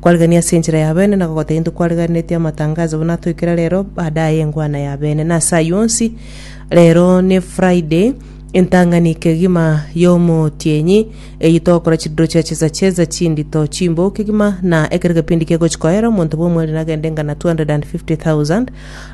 Kwarigania ase enchera y'abene na gogoteba intwe kwariganiretie amatangazo buna atoikire rero baada aye engwana y'abene. Na ase ayio onsi rero ne Friday entang'ani kegima y'omotienyi eyio togokora chidiro chia chesachesa chindito chimbou kegima na ekero kepindi kegochi koera omonto bw'omweriri nagende ngana 250,000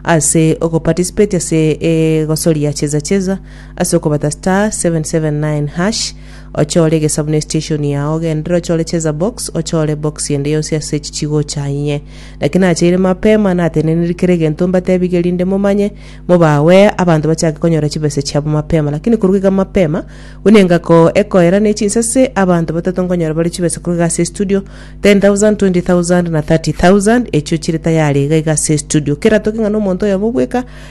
ase ogoparticipate ase egosoria chesachesa ase okobata *779#. Ochore egesabuni esiteshoni yao, genderera ochore cheza box, ochore box ende yonsi ase echi chigocha inye. Naki nacheire mapema, nateneneri kera egento mbatebige rinde momanye, mobawe abanto bachake konyora chibesa chiabo mapema. Lakini korwa iga mapema, buna engako ekoera ne chinsase, abanto batato nkonyora bare chibesa korwa iga ase estudio, 10,000, 20,000, na 30,000, echio chire tayari iga iga ase estudio. Kera toke ng'a nomonto oyomo bweka,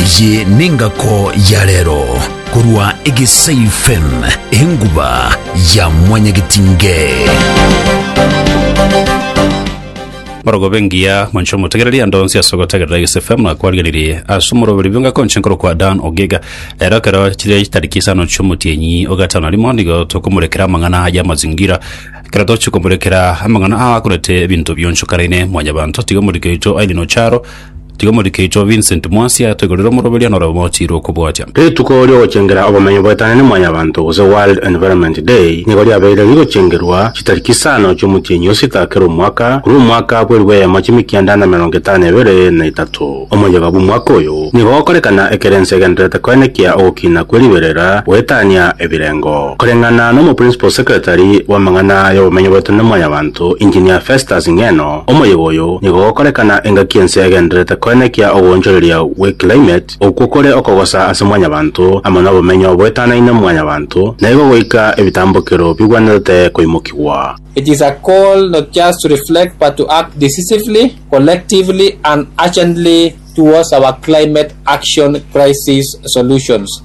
Eye nengako ya rero korwa Egesayu FM, enguba ya mwanyagetinge. Borogobe engiya mwancho omotegereri ande onsi ase ogotegerera Egesayu FM na kwarigereria ase omoroberi bwe engaki onche nkorokwa Dan Ogega. Rero ekero chire chitariki isano chiomotienyi ogatano na rimo nigo tokomorekera amang'ana aya amazingira. Ekero tochi komorekera amang'ana aa akorete ebinto bionchokanaine, mwanyabanto tiga omoriki oito aine nocharo Tiga omorikeichwa Vincent Mwasi ategerere omoroberia nore omochiire okobwatia. Rituko ri'ogochengera obomenyo bwetanane mwanyabanto gose World Environment Day nigo riabeire rigochengerwa chitariki isano chi'omotienyi o sita kera omwaka korwa omwaka bwerigwa eyemo chimikianda na emerongo etano ebere na etato. Omoyega bw'omwaka oyo nigo gokorekana ekero ense egendererete koenekia ogokina kwe riberera goetania ebirengo. Koreng'ana n'omo Principal Secretary bw'amang'ana y'obomenyo bwetanane mwanyabanto, Engineer Festus Ng'eno, Omoyega oyo nigo gokorekana engaki ense egendererete koenekia ogoonchoreria gwe climate okwo kore okogosa ase mwanyabanto amo nobomenyo boetanaine mwanyabanto naigo goika ebitambokero bigwenerete koimokigwa. It is a call not just to reflect but to act decisively, collectively and urgently towards our climate action crisis solutions.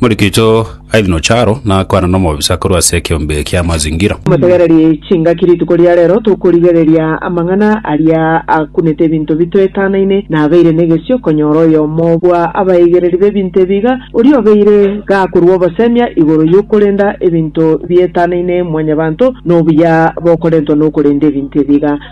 Omorikito Aidan Ocharo nakwana nomobisa korwa ase ekeombe kia mazingira. Motegereri chingaki rituko ria rero tokorigereria amang'ana aria akunete ebinto bitoetanaine na abeire negesio konyora oyomo bwa abaigereri b'ebinto ebi iga, oria obeire gakorua obosemia igoro y'okorenda ebinto bietanaine mwanyabanto nobuya bokorentwa nokorenda ebinto ebi iga.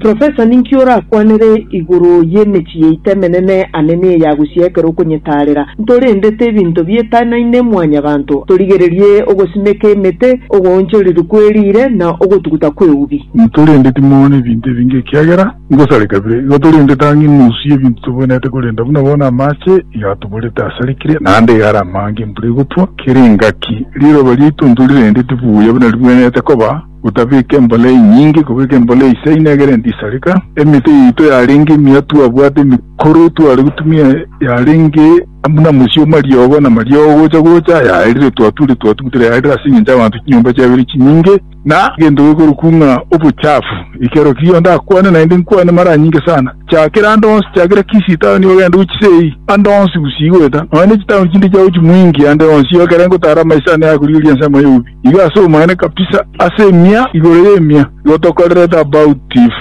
Professor ninki orakwanere igoro y'emechie yaito emenene ane ne eya gusii ekero okonyetaarera? Ntorendete ebinto bietanaine mwanyabanto, torigererie ogosimeka emete, ogoonchoriri kwe riire, na ogotuguta kw'eubi. Ntorendeti mono ebinto ebinge ekiagera ngosare kabere. Igo torendete ang'e enusu y'ebinto toboinerete korenda buna bono amache iga atoborete asarikire, naende iga are amaango embura egotwa kera engaki. Riroba riaito ntorirendeti buya buna riboinerete koba. Gotabeka embolei nyinge, kobeka embolei isya ine egere ndisareka. Emete yaito yarenge emiya twabwate emikoro tware gotumia yarenge buna mosio omariogo na mariogo gocha gocha ayaerire twature twatugutera yarire ase engencho y'abanto chinyomba chiabere chinyinge na egento gekorokwa ng'a obochafu ekero kiria onde akwane naende nkwane mara nyinge sana chakera ande onsi chakera kisii town ogende gochisei ande onsi gusii goeta nonya ne chitown chinde chiago chimoingi ande onsi ekero ngotara amaiso ane akorigereria ensemo y'obubii Iga ase obomonene kabisa, ase emia igoro y'emia, igo tokorerete about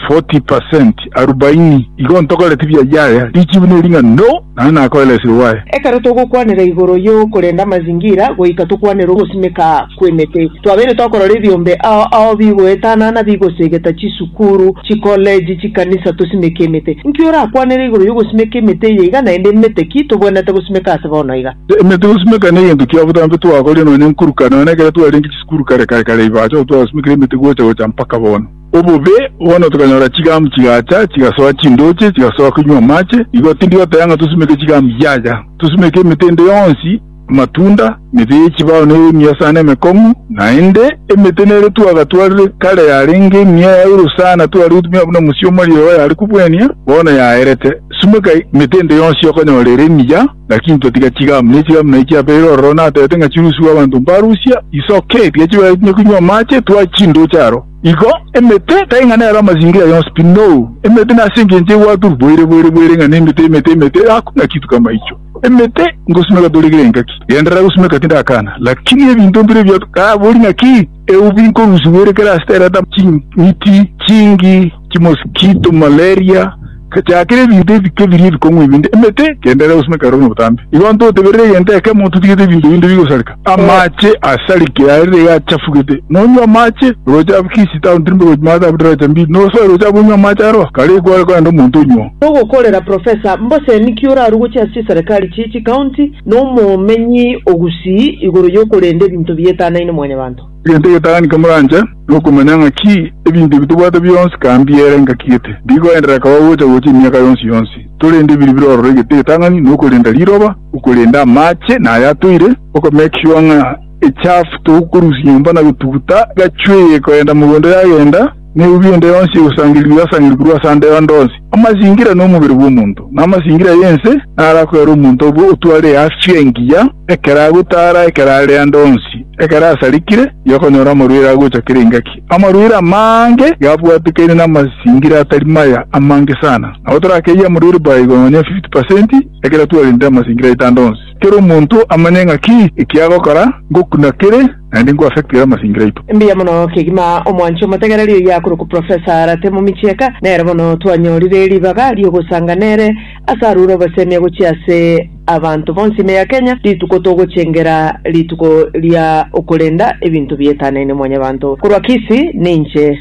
forty per cent, arubaini, igo ntokoreti bia yaya, richibu ne ring'ana, no, naende nakoera esiro bwaye. Ekero togokwanera igoro y'okorenda amazingira goika tokwanere ogosimeka kw'emete, twabeire tokorora ebiombe ao ao bigoetana na bigosegeta chisukuru, chikoleji, chikanisa tosimeke emete. Inki orakwanere igoro y'ogosimeka emete eye iga naende emete ki tobwenerete gosimeka ase bono iga? Ime tigosimeka negento kia botambe twakorire nonya nkuruka, nonya nekero twarenge chisukuru kare kare kare igo acha gotwagosimekera emete gocha gocha mpaka bono. Obobe, bono tokanyora chigamu chigacha, chigasoa chindoche, chigasoa koinywa amache, igo tindi goteba ng'a tosimeke chigamu, yaya, tosimeke emete ende yonsi, amatunda, emete ye chibao nere emiya sana emekong'u, naende emete nere twagatwarire kare yarenge emiya yaigoro sana tware gotumia buna mosia omorio oyo are kobwania, bono yaerete. Simeka emete ende yonsi okonyora ere emiya. Naki intotiga chigamu, ne chigamu naye chiabeire ororo, natete ng'a chirusigwe abanto mbarusia isooke, ekiya chibaetinye koinywa amache, twae chindooche aro. Igo emete, tari ng'a nero amasingira yonsi pi, noo, emete nase engencho egwaturwa boire boire boire ng'a nemete, emete, emete, egakwa ng'a kituko amaicho. Emete, ngosumeka toregire engaki, genderera gosumeka tindakana, lakini ebinto mbire ebio, tabori ng'aki, eubi nkorusigwa ere kera ase terata ching'iti chingi. chimosikito, malaria, gachakere ebinto ebike biria ebikong'u ebinde, emete, kende ere gosina kare ore nobotambe. Igo ntoteberere egento ekemo, totigete ebinto binde bigosareka. Amache asarikire arire iga achafugete, nonywe amache, oroche abakisi tao ntirimbe gochi maate abwo riroche mbiri, nosoe roche abwo onywe amache aroa, kare ekware korende omonto onyuo. Togokorera Professor Mboseni ki orarugoche ase chiserekari chie chikaunti na omomenyi o Gusii igoro yokorenda ebinto bietanaine mwanyabanto. Egento egetang'anike moranche, nokomanya ng'a ki ebinto ebi tobwate bionsi ka mbiere ngaki gete, mbigoenderera kaba gocha gocha emiaka yonsi yonsi. Torende biri birororo egento egetang'ani, nokorenda riroba, okorenda amache na aya atoire, okomake sure ng'a echafu togokorusia nyomba na gotuguta gachweye koenda mogondo yagenda, Nebibe ende yonsi egosangerigwa yasangerigwe korwa ase ande onde onsi, amasingira nomobere bw'omonto, na amasingira y'ense narakoere omonto obe otware eafia engiya ekero agotara, ekero are ande onsi, ekero asarikire, yokonyora amarwaire agocha kera engaki. Amarwaire amange yabwatekaine namasingira atari maya amange sana. Nabo torakeyie amarwaire by igoro nonya fifty percent ekero twarente amasingira aito ande onsi. Kera omonto amanye ng'aki ekiagokora, ngokuna kere. naende nko affect ere amasingira aito. Mbuya mono kegima omwanche omotegereri oyo akorokwa Professor Arate Mumichieka, nere bono twanyorire ribaga riogosanga nere ase arure obosemia gochia ase abanto bonsi ime ya Kenya rituko togochengera rituko ria okorenda ebinto bietanaine mwanyabanto korwa Kisii ninche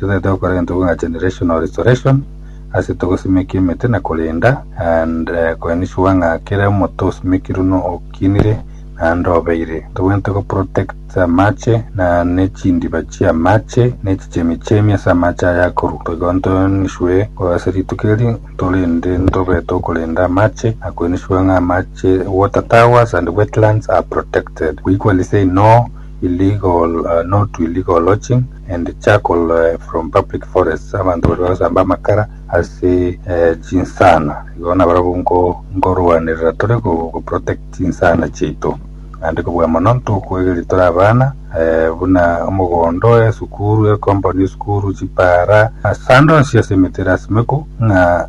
Totaete gokora egento buna generational restoration ase togosimekia emete na korenda and ko ensure ng'a kera omote osimekirwe no okinire naende obeire. Tobwenerete go protect amache na ne chindiba chia amache na echichemi chemi ase amache aya akorwa. Igo nto ensure ko ase rituko eri ntorende ntobeete okorenda amache na ko ensure ng'a amache water towers and wetlands are protected. We equally say no illegal, no to illegal lodging. and charcoal from public forests abanto baria bagosamba amakara ase chinsana igo nabarabwo nkorwanerera tore go protect chinsana chiaito naende kobua mono ntokoegeria tore abana buna omogondo esukuru ecompund esukuru chipara ase ande onsi ase emete erasimekwu ng'a.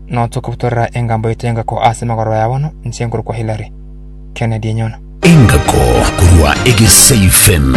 Notokobutorera engambo yaito y'engako ase magoro ya bono, inche nkorokwa Hillary. Kennedy enyona. Engako korwa egesaifen.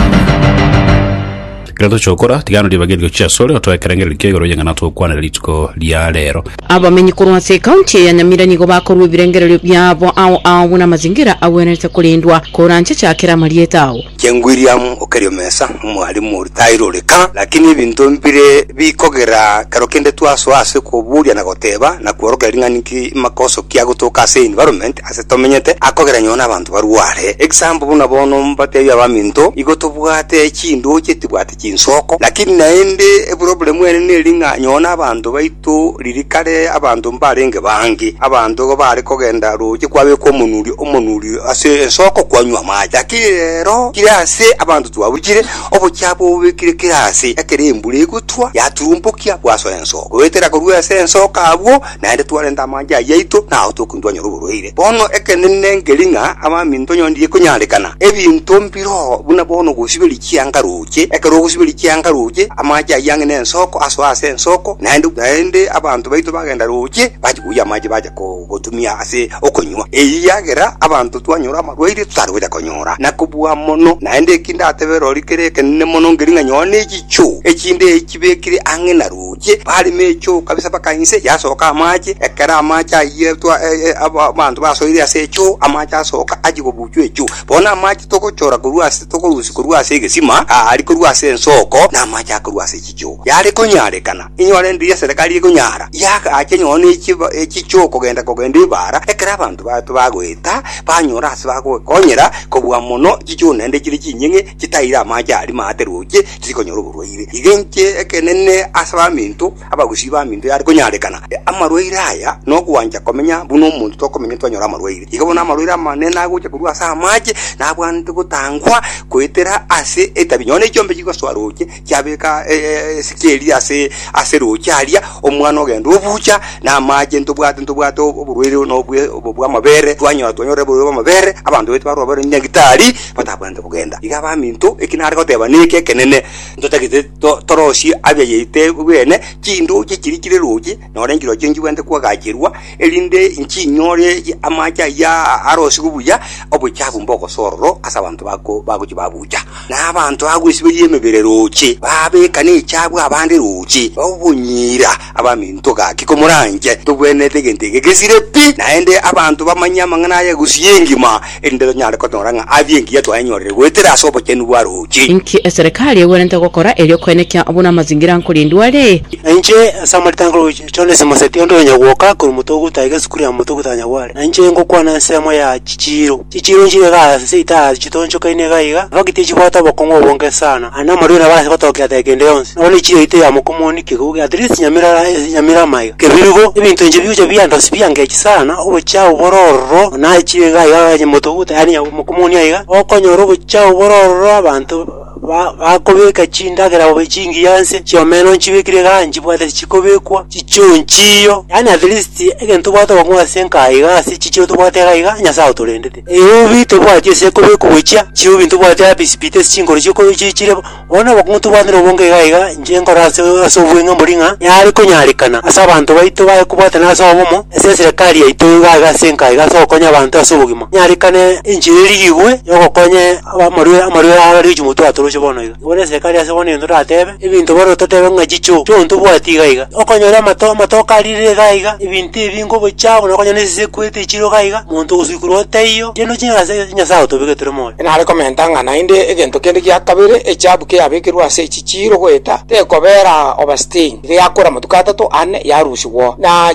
Ekero tochia gokora, tiga naro ribagerio chiaso ore otoe ekerengererio kia igoro y'eng'ana togokwanera rituko ria reero. Abamenyi korwa ase ekaunti ya Nyamira nigo bakorua ebirengererio biabo ao ao buna amazingira agwenerete korendwa, koranche chakera amarieta ao. King William o Keriomesa, omwalimu oria taire ore ka, lakini ebinto mbire bikogera kero kende twasoa ase koboria na goteba na kworokia ring'ana inki makoso ki agotoka ase environment ase tomenyete akogera nonye nabanto barware. Example buna bono mbatebie abaminto igo tobwate chinduo chitibwate chinsoko, lakini naende eburobure mwene neri ng'a nyoo nabanto baito ririkare abanto mbarenge bange, abanto igo bare kogenda roche kwabekwa omonuri omonuri ase ensoko kwanywa amache. Lakini rero kire ase abanto twabuchire, obochia bobekire kire aase, ekero embura egotwa yaturumbokia bwasoa ensoko, goetera korwa ase ensoko abwo, naende twarenta amache ayio aito nao tokontwanyora oborwaire. Bono ekenene nkeri ng'a abaminto nyoni tigekonyarekana ebinto mbiro buna bono ogosiberia chianga roche. Ekero ogosiberia chianga roche, amache ayio ang'e nensoko, asoe ase ensoko, naende naende abanto baito bagenda roche bachi koyia amache bacha ko- gotumia ase okonywa. Eyio yagera abanto twanyora amarwaire totari gocha konyora. Na kobua mono, naende eki ndatebere rorio kere ekenene mono nkeri ng'a nyowe nechichoo echinde chibekire ang'e na roche. Inche barimo echoo kabisa mpaka inse yasoka amache, ekero amache ayio twa- e- e- aba- abanto basoire ase echoo, amache asoka achie kobuchwa echoo. Bono amache togochora korwa ase tokorusia korwa ase egesima, aa aria korwa ase ensoko, na amache aya korwa ase chichoo. Yare konyarekana, inyore ndiri eserekari ekonyara, yagacha nonye na echiba echichoo kogenda kogenda ebara, ekero abanto bato bagoeta, banyora ase bagoekonyera kobua mono chichoo naende chire chinying'e chitaire amache aria maate roche, tikonyora oborwaire. Iga inche ekenene ase baminto, abagusii baminto yare konyarekana. Amarwaire aya nogwancha komenya buna omonto tokomenya twanyora amarwaire. Iga bono amarwaire amanene nagocha korwa ase amache nabwanete gotangwa goetera ase etabi. Nonye na echiombe chigosoa roche chiabeka esike eria ase ase roche aria, omwana ogenda obucha na amache ntobwate ntobwate oborwaire buna obwe obwo bw'amabere, twanyora twanyorire oborwaire bw'amabere, abanto baito barwara bare nyagetari. batabwenerete kogenda. Iga abaminto, eki nare goteba neke ekenene, ntotagete to- torosie abeyaite bene chindooche chiria chire roche, nore enchirochio nchibwenerete koagacherwa, erinde nchinyore amache ayio arosigwe buya, obochafu mbogosororo ase abanto bako- bagochia babucha. Na abanto bagwesiberia emebere roche, babeka nechiabu abande roche, obonyira, Abaminto, gaki komoranche. Togwenerete egento eke gesire pi, naende abanto bamanye amang'ana aya egusu y'engima, erinde tonyare konyora ng'a aa bi'engiya twayenyorire goetera ase obochenu bwa roche. Inki eserekari egwenerete gokora erio koenekia buna amazingira nkorindwa are? Na inche, ase amarita a Nkoruchi, Jones Mosetia, onde oyonyagwoka korwa motogoto aye gesukuru ya motogoto ya Nyagware, na inche ngokwana ensemo ya chichiiro. Chichiiro nchire iga ase itaha chitonchokaine iga iga, nabaki tichibwate obokong'u obonge sana, aye namorwiri nabarase gotookia ata egento yonsi, nabo ne chiyoito ya mokomoni kegouge, at least nyamirara ase nyamira amaiga. Kebirugo, ebinto inche bigocha biandosia biangechi sana, obochao bore ororo, onachire iga iga onye motoguta yaani mokomoni aiga, okonyora obochao bore ororo abanto. ba- bakobeka chindagera bobe chingiya nse chi'omena nchibekire iga nchibwate tichikobekwa, chichie onchiyo. Yaani at least egento tobwate okong'u ase enka iga ase chichie tobwate iga iga Nyasae otorendete. Eubi tobwati ase ekobekwa gochia, chiubi ntobwati happy speed ase chinkoro chi'oko chi- chire bo. Bono obokong'u tobwate na obonge iga iga inche nkore ase ase obweng'e mbori ng'a yare konyarekana ase abanto baito baye kobwatana ase obomo ase eserekari yaito iga iga ase enka iga ase ogokonya abanto ase obogima. Nyarekane enchera erigigwe yogokonya Abamorwire amorwire aya bare chimotwe atoroche bono iga. Bore esegi aria ase bono egento ndatebe, ebinto bono totebe ng'a chicho, chi'o ntobwati iga iga. Okonyora amato amatoke arire iga iga, ebinto ebi ngobocha buna okonyora esese ekwete echiro iga iga, monto ogosuikurwa otaiyo, tiende ochire ng'a ase Nyasaye agotobeka tore moyo. Nare komenta ng'a naende egento kende gia kabere echabu keyabekerwe ase echi chiiro goeta, tekobera overstaying, iga yakora amatuko atato, ane, yarusigwa, na.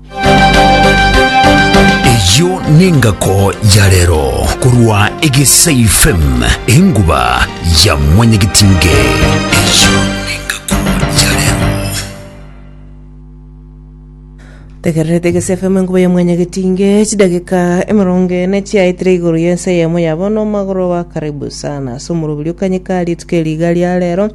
Eyio nengako ya rero korwa Egesaifem, enguba ya mwanyagetinge. Eyio nengako ya rero. Tegererete Egesefemu enguba ya mwanyagetinge, chidageka emerongo ene chiaetire igoro y'ense eyemo ya bono, omogoroba karibu sana. Ase omorobiri o kanyikari, etuko ya rigaria rero,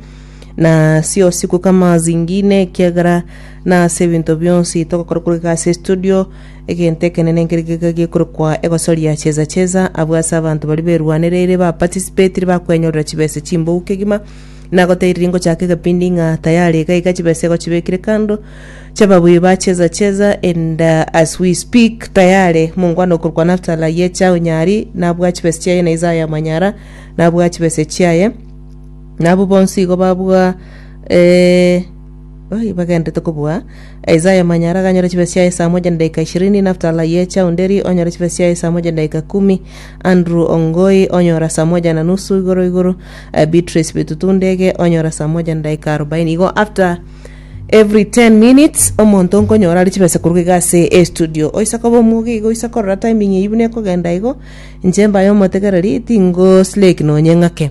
na ase osiku kama zingine ekiagera na ase ebinto bionsi togokora koreka ase studio egento ekenene nkeri geka gekorokwa egosoria cheza cheza abwo ase abanto bari berwanereire ba participatire bakwenyorera chibesa chimbou kegima nagoteiriri ngochaka egepindi ng'a tayari iga iga chibesa egochibekire kando chababui ba cheza cheza and uh, as we speak tayari mongwana okorokwa naftala yecha onyari nabwa chibesa chiaye na isaya manyara nabwa chibesa chiaye Nabwo bonsi igo babua eh, oi, bagenderete kobua. Isaya Manyara ganyore chibesa chiaye esaa moja na edaika ishirini, Naftali ye Chaunderi onyore chibesa chiaye esaa moja na edaika kumi, Andrew Ongoi onyora saa moja na nusu igoro igoro, eh, Beatrice Bitutu Ndege onyora saa moja na edaika arobaini. Igo after every 10 minutes omonto nkonyora are chibesa koruga iga ase estudio. Oise koba omoge igo oise korora timing eyio buna ekogenda igo, inche mbaye omotegereri tingo slake nonye ng'ake.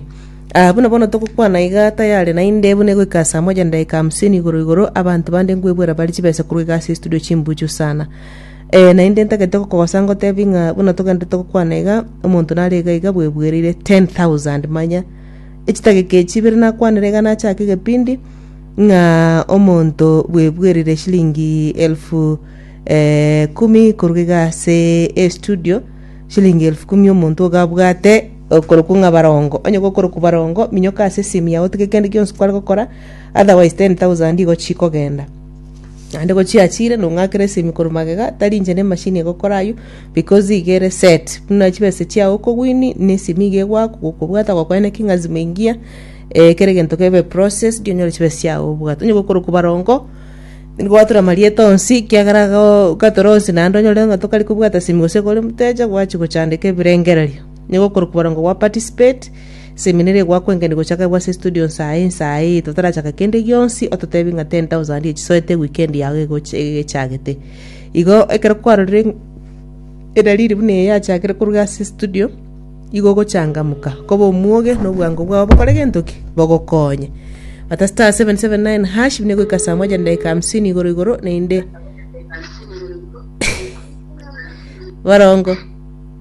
Aa, buna bono togokwana iga, tayare naende buna egoika saa moja na edaika hamsini igoro igoro, abanto bande nkwebwera bare chibesa korwa iga ase estudio chimbuchu sana. Ee, naende ntagete gokogosa ngotebie ng'a buna togenda togokwana iga, omonto nare iga iga bwebwereire 10,000 manya echidageka echi ibere nakwanire iga nachake egepindi ng'a omonto bwebwereire shilingi elfu eh, kumi korwa iga ase estudio, shilingi elfu kumi omonto iga abwate, Okorokwa ng'a barongo. Onye gokorokwa barongo, minyoka ase esemi yao otige kende gionsi kware gokora, otherwise ten thousand igo chikogenda. Naende gochiachire nong'akere esemi korwa magega, tari inche ne machine egokora ayio, because iga ere set. Buna chibesa chiao okowin, na esemi iga egwaku, gokobwata gokweneki ng'a lazima engiya, eh kera egento kebe processed, onyore chibesa chiao obwate. Onye gokorokwa barongo, nigo gwatura amarieta onsi, kiagera iga oo, gatore onsi naende onyore ng'a tokari kobwata esemi gose kore motecha, gwachi gochandeka ebirengererio. Nigo okorokwa boronge gwa participate, seminary egwakwenkeni gochaka ebwe ase studio nsae nsae eye totarachaka kende gionsi ototebi ng'a 10,000 ye chisoete eweekend yao egoch- egechagete. Igo ekero kwarorire ng- edalili buna eye yachakire koruga ase studio, igo ogochangamuka, koba omwoge na obwango bwao bokore gento ki? Bogokonye. Bata star 779# buna egoika saa moja na dakika hamsini igoro igoro naende borongo.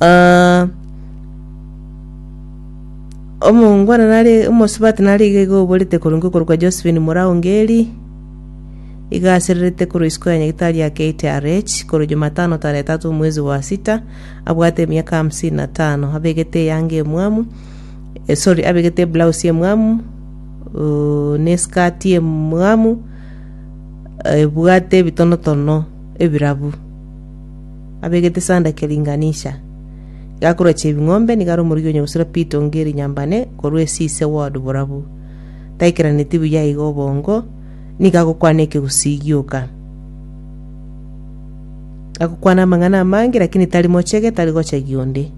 Ah, omongwana nare omosubati nare iga iga oborete korenge okoru kwa Josephine Muraungeri, iga asererete korwa isiko ya nyagitari ya KTRH korwa Jumatano tarehe tatu mwezi wa sita, abwate emiaka hamsini na tano, abegete eyanga emwamu, eh, sorry, abegete eblouse emwamu, uh, ne eskati emwamu, eh, ebwate ebitonotono ebirabu. abegete sanda kia ringanisha. Gakorache ebing'ombe nigo are omorigi onya gosira pito nge erinyambane korwa esise word borabu. Taikeraneti buya iga obongo nigo agokwana ekegusii gioka. Agokwana amang'ana amange lakini tari mochege tari gocha gionde.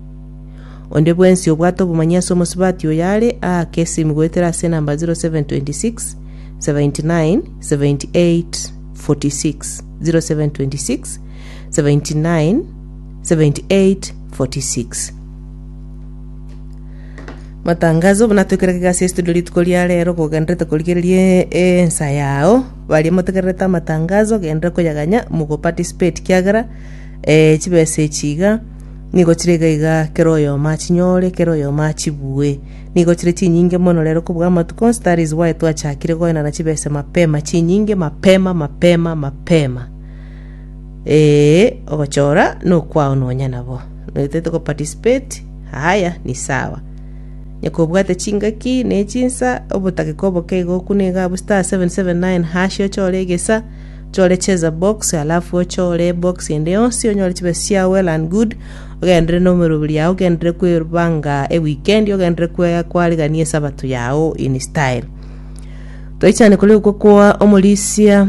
Onde bwensi obwate obomanyi ase omosubati oyo are aa kesimu goetera ase enamba 0726 79 78 46 0726 79 78 46 Matangazo buna twekera kegasi estudio rituko ria rero kogenderete korigereria ensa yao baria motegererete amatangazo genderera koyaganya mogoparticipate kiagera eh, chibesa echi iga nigo chire iga iga kero oyomo achinyore kero oyomo achibue nigo chire chinyinge mono rero kobua amatuko onsi that is why twachakire goenana chibesa mapema chinyinge mapema mapema mapema Ee, ogochora nokwao nonya nabo. Noetete go participate, haya, ni sawa. Nyoko obwate chingaki ne chinsa, obotake kwa oboke iga okune iga abwo star 779 hash ochore egesa, ochore cheza box, alafu ochore box ende yonsi onyore chibesa chiao well and good, ogendere na omeroberi yao, ogendere kwebanga e weekend, ogendere kwe- kwarigania esabato yao in style. Twaichane kore okwo kwa omorisia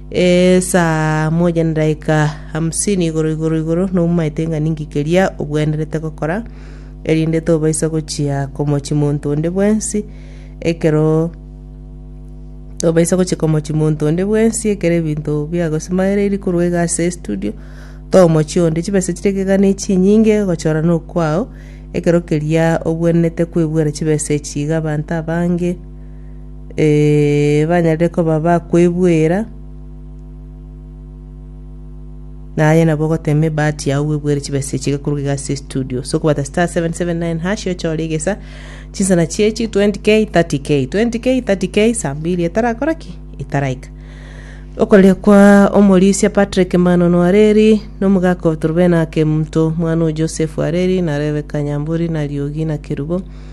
Esaa moja na edaika hamsini igoro igoro igoro noumaete ng'a ninki keria ogwenerete gokora, erinde tobaisa gochia komochi monto onde bwensi ekero tobaisa gochia komochi monto onde bwensi ekero ebinto biagosimageririe korwa iga ase estudio too omochie onde. Chibesa chiria gega ne chinyinge gochora nokwao, ekero keria ogwenerete kwebwera chibesa echi iga abanto abange. eh, banyare koba bakwebwera, naye nabo ogotema ebahati yao bwebwere chibesa echi gekorwa iga ase studio so kobata star 779 hash ochore egesa chinsana chiechi 20k 30k 20k 30k saa mbili etarakora ki etaraika okorere kwa omorisia patrick manono areri nomogaka otorobena kemunto mwana o joseph areri na rebeka nyamburi na riogi na kerubo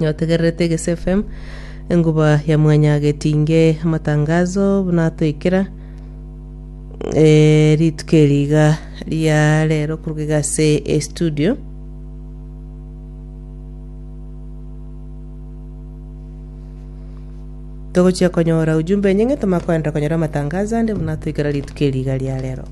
Nyotegererete Egesu FM, enguba ya mwanyagetinge amatangazo buna atoikera eh, rituko eriga ria rero kuruga iga ase estudio togochia konyora ujumbe enyinge tomakoenderera konyora amatangazo ande buna toikera rituko eriga ria rero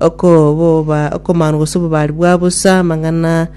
okoboba okomanu gose obobari bwa bosa, amang'ana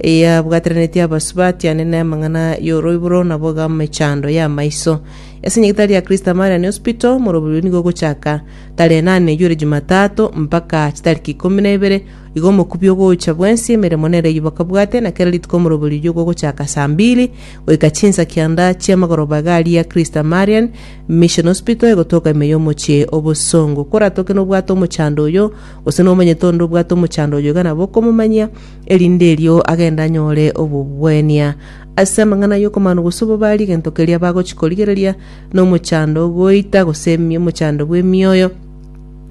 yabwateranetie abasuba, atianene amang'ana y'oroiboro, na boga emechando y'amaiso. Ase nyagetari ya Kristo Amarian Hospital, omoroberio nigo ogochaka tarehe inana eyoire Jumatatu mpaka chitariki ikomi na ibere, igo omokubio ogocha bwensi emeremo nere eyio bakabwate, na kera rituko omoroberio oyio ogochaka saa mbili goika chinsa kianda chi'amagoroba iga aria Kristo Amarian Mission Hospital egotoka ime y'omochie o Bosongo. Koratoke nobwate omochando oyo, gose nomanyete onde obwate omochando oyo iga nabo okomomanyia, erinde erio agende anyore obobwenia. Ase amang'ana y'okomanu gose obobari egento keria bagochi korigereria nomochando ogoita gose emi- omochando bw'emioyo,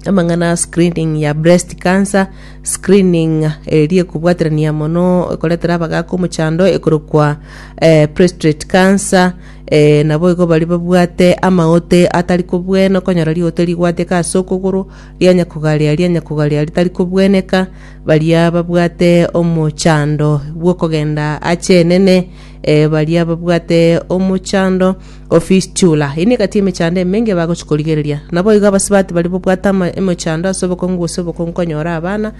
amang'ana a screening ya breast cancer, screening eria ekobwaterania mono ekoretera abagaaka omochando ekorokwa eh, prestrate cancer, Ee, naboigo baria babwate amaote atari kobwena, okonyora riote rigwateka ase okogoro, rianya kogaria, rianya kogaria ritari kobweneka, baria babwate omochando bw'okogenda ache enene, ee, baria babwate omochando o fistula. Eyio negati emechando emenge bagochi korigereria. Naboigo abasibati baria babwate ama- emochando ase obokong'u gose obokong'u konyora abana,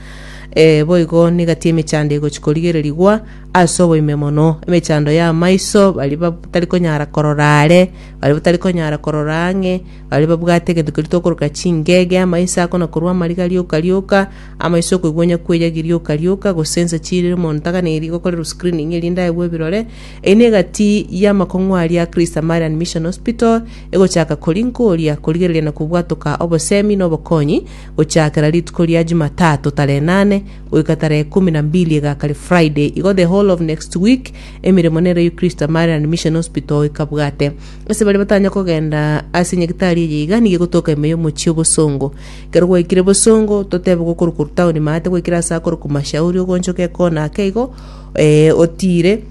ee, boigo negati emechando egochi korigererigwa, Ase oboime mono, emechando y'amaiso baria batari konyara korora are, baria batari konyara korora ang'e, baria babwate egento keria tokoroka chingege, amaiso akona korwa amariga rioka rioka, amaiso okoigwa onya kweyagi rioka rioka, gose ense chire omonto taganeirie gokorerwa screening eria ndaegwe ebirore, eyio negati y'amakong'u aria a Christ Samarian Mission Hospital egochaka koria nkoria korigereria na kobwatoka obosemi na obokonyi gochakera rituko ria Jumatatu tarehe enane goika tarehe ikomi na mbili egakare Friday, igo the whole of next week emeremo nero ye Christ Tamari and Mission Hospital ekabwate. Ase baria batanya kogenda ase nyagitari eye iga nigo egotoka ime y'omochie o Bosongo. Ekero gwaikire Bosongo, totebe gokoroka korwa town maate gwaikire ase akorokwa Mashauri ogoonchoka ekona ake igo eh, otiire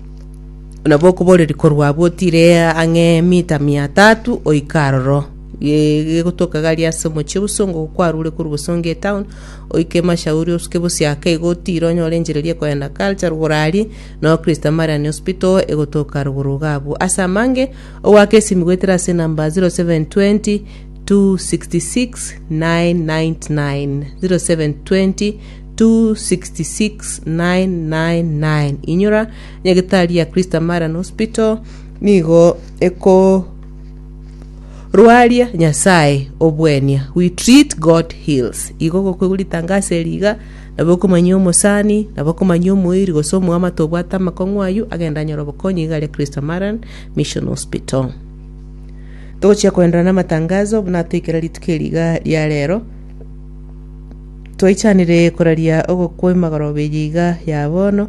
nabo okoboreria korwa abwo otiire ang'e mita mia tatu oika aroro. Ge- gegotoka gari ase omochie o Bosongo kwarure korwa Bosongo etown oike emashauri osuke bosiake igo otiire onyore enchiriri ekoenda culture rugoro aria noo christ marian hospital egotoka rugoro iga abwo ase amange ogoaka esimi goetera ase enamba 0720 266999 0720 266999 inyora nyagitari ya christ marian hospital nigo eko Rwaria Nyasae obwenia, we treat God heals. Igo gokoigwa ritangaso eri iga, nabo okomanyia omosani, nabo okomanyia omoiri gose omoamate obwate amakong'u ayio, agende anyore obokonyi iga aria Kristo Maran Mission Hospital. Togochia koenderera namatangazo buna toikera rituko eri iga ria rero. Twaichanire koraria ogokwa emagoroba eye iga ya bono.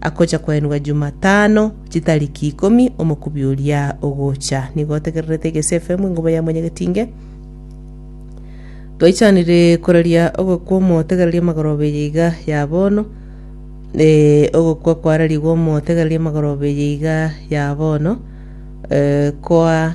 akocha koenwa Jumatano chitariki ikomi omokubi oria ogocha. Nigo otegererete egese efemu engobo ya mwanyagetinge. Twaichanire koraria ogokwa omotegereria amagoroba eye iga ya bono. Eh, ogokwa kwararigwe omotegereria amagoroba eye iga ya bono. Eh, kwa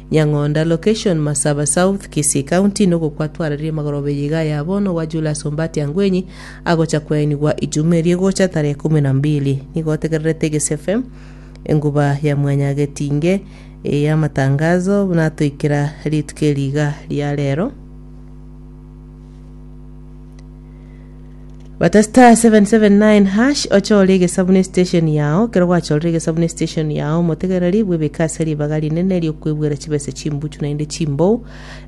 Nyang'onda location Masaba South Kisii County nokwo kwatwarereire magoroba eye iga aya bono gwa Julius Ombatia Ngwenyi agocha koenigwa ijuma erio egocha tarehe kumi na mbili nigo otegererete Egesia FM enguba ya mwanya getinge ya amatangazo buna atoikera rituko eri iga ria rero Bata star 779 hash ochore egesabu ne station yao ekero gwachorire egesabu ne station yao omotegereri bwebeke ase ribaga rinene riokwebwera chibesa chimbuchu naende chimbou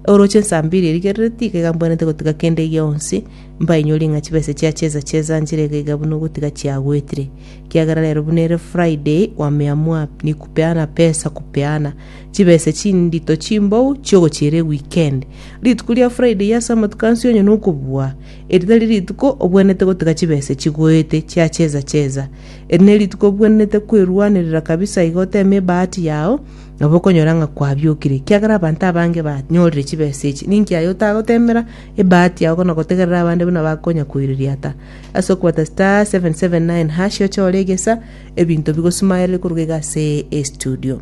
oroche nsambiri erigerereti iga egambwanete gotiga kende gionsi mbainyori ng'a chibesa chia cheza cheza nchire iga iga buna ogotiga chiagwetire kiagera rero buna ere friday wameamua ni kupeana pesa kupeana chibesa chindito chimbou chiogochiera eweekend rituko ria friday ase amatuko ansi onye nokobua Eri tari rituko obwenerete gotega chibese chigoete chia cheza cheza. Eri nerituko obwenerete kwerwanerera kabisa iga oteme ebahati yao nabo okonyora ng'a kwabiokire. Kiagera abanto abange banyorire chibesa echi. Ninki aye otagotemera ebahati yao na gotegerera abande buna bakonya koireria ata? Ase okobata star 779 hash ochore egesa ebinto bigosumayerere koruga iga ase estudio.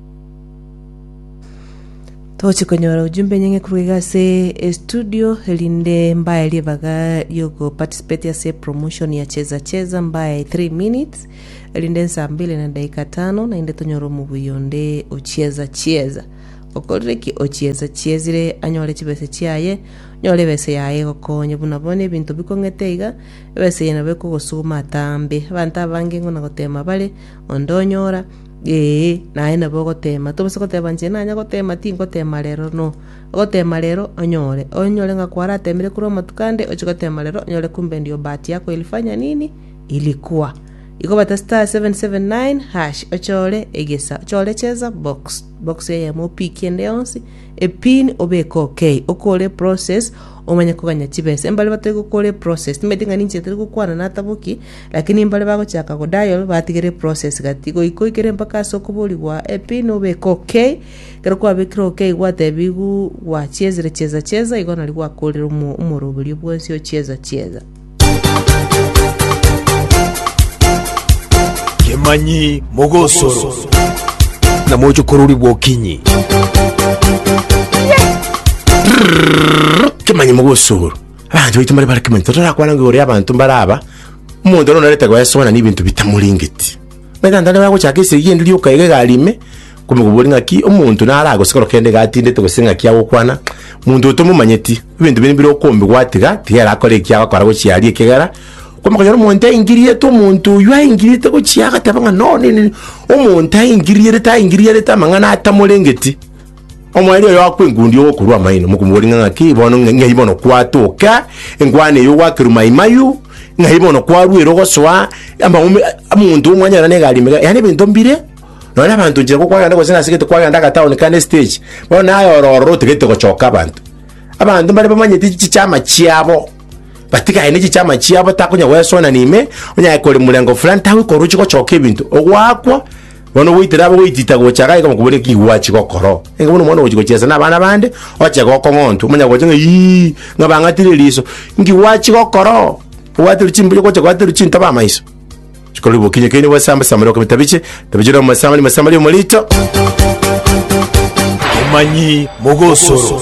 Togochi konyora ujumbe enyinge korwa iga ase estudio erinde mbaye ribaga riogo participate ase promotion ya cheza cheza mbaye 3 minutes erinde saa mbili na dakika tano naende tonyore omobuyi onde ochieza chieza okorire ki ochieza chiezire anyore chibese chiaye onyore ebese yaye egokonye buna bono ebinto bikong'ete iga ebese eye nabo ekogosuguma atambe abanto abange ng'o nagotema bare onde onyora Ee, naye nabo ogoteema. Tobasa goteema inche nanya goteema, tingoteema rero, no. Ogoteema rero onyore. Onyore ng'a kwarateemire korwa amatuko ande, ochie goteema rero onyore kumbe ndio bahati yako ilifanya nini? Ilikuwa. Igo bata star seven seven nine hash ochore egesa, ochore cheza box, box eyemo opikie ende yonsi, epin obeke okay, okore process, omanye koganya chibesa. Mbare batari gokora eprocess, timaeti ng'a ninche tari gokwana nataboki. Lakini mbare bagochaka go dial batigere eprocess gati goika oikere mpaka ase okoborigwa epin obeke ok. Ekero kwabekire ok gwatebigu gwachiezire chieza chieza igo nario gwakorire omo- omoroberio bwensi o chieza chieza. Kemanyi mogosoro. Na moche kororigwa okinyi. Kemanyi mogosoro. Abanto baito mbare barakimanya, totorakwane ng'a igoro y'abanto mbare aba, omonto noro narete goeswana n'ebinto bitamoringeti. Onye tata nabo agochaka esegi ende rioka iga egari ime, nkomoboria ng'aki omonto naro agose kero kende iga atindete gose ng'aki agokwana, monto oyo tomomanyeti, ebinto bire mbire okombe gwatiga, tiga ere akore eki agokora gochia aria ekegera, okoima okonyora omonto aingirierete omonto oyio aingirierete gochia agateba ng'a no nini, omonto aingirierete aingirierete amang'ana atamorengeti. Omoerio oyo akwa enkundi ogokorwa amaino, mokomobori ng'a ng'aki bono, ng'a- ng'ai bono kwatoka enkwana eyo gwakerwa maimayu, ng'ai bono kwarwera ogosoa amaume omonto omwanyora na egari mega, yaani ebinto mbire, nonya abanto nchera ko kwagenda gose nase gete kwagenda agataoni kande estage, bono naye oro ororo otagete gochoka abanto. Abanto mbare bamanyete chi- chiama chiabo, batigaine chichama chiabo takonya goesoana na ime, onye aye kore morengo fulani, tagokoroche gochoka ebinto, ogwakwa. Bono goitera abo goitita gocha gake komokoboria ki gwachi gokoro. Enga bono omwana ogochi gochesa na abana bande, oche gokong'ontu, omanya gocha ng'a iyii, ng'a bang'atire eriso. Nki gwachi gokoro? Obwatire chimbuya gocha gwaterwe chintobo amaiso. Chikorwa bokinyi kaini bwesamba samba rioka bitabiche, tabiche rioka masamba ni masamba rio morito. Omanyi mogosoro.